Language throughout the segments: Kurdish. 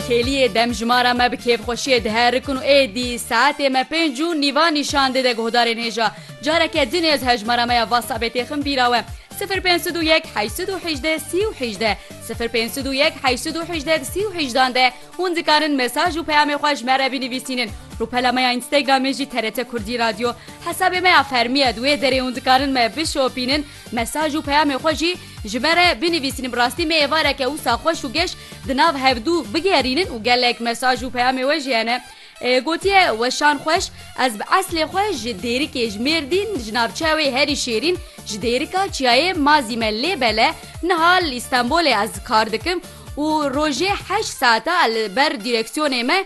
Kêliyê demjimara me bi kêfxweşiyê diherikin û êdî saetê me pênc û nîvan nîşan dide guhdarên hêja. Careke din ez hejmara me ya WhatsAppê têxim bîra we, sifir pênc sed û yek heşt sed û hejdeh sî û hejdeh, sifir pênc sed û yek heşt sed û hejdeh di sî û hejdan de hûn dikarin mesaj û peyamê xwe ji me re binivîsînin. Rûpela me ya Instagramê jî TRT Kurdî Radyo. Hesabê me ya fermî ye di wê derê hûn dikarin me bişopînin. Mesaj û peyamê xwe jî ji me re binivîsîn bi rastî me êvareke wisa xweş û geş di nav hevdû bigerînin û gelek mesaj û peyamê we jî hene gotiye weşan xweş ez bi eslê xwe ji dêrikê ji mêrdîn ji navçeya wê herî şêrîn ji dêrika çiyayê mazî me lê bele niha li îstenbolê ez kar dikim û rojê heşt saeta li ber dîreksiyonê me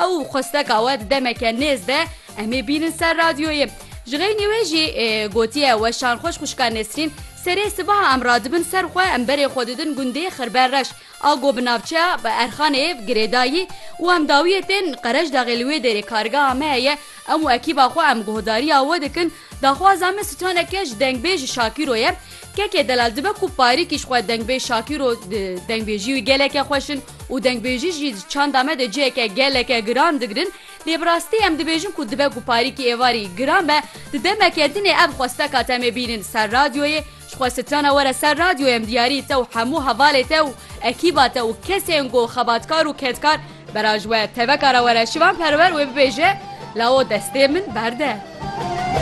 Ew xwesteka we demeke nêz be em ê bînin ser radyoyê. Ji xeynî wê jî gotiye weşan xweş xwişka Nesrîn serê sibaha em radibin ser xwe em berê xwe didin gundê Xirben Reş a ku bi navçeya Erxanê girêdayî û em dawiyê tên Qereşdaxê li wê dêrê kargeha me heye em û ekîba xwe em guhdariya we dikin daxwaza me sitaneke ji dengbêj Şakîro ye kekê delal dibe ku parîkî ji xwe dengbêj Şakîro dengbêjî wî geleke xweş in. Û dengbêjî jî di çanda me de ciheke geleke giran digirin, lê bi rastî em dibêjin ku dibe ku parîkî êvarî giran be, di demeke din ê ev xwesteka te em ê bînin ser radyoyê, ji xwe strana were ser radyoyê em diyarî te û hemû hevalê te û ekîba te û kesên ku xebatkar û kedkar bera ji we teveka re were şivan perwer wê bibêje, Lawo destê min berde.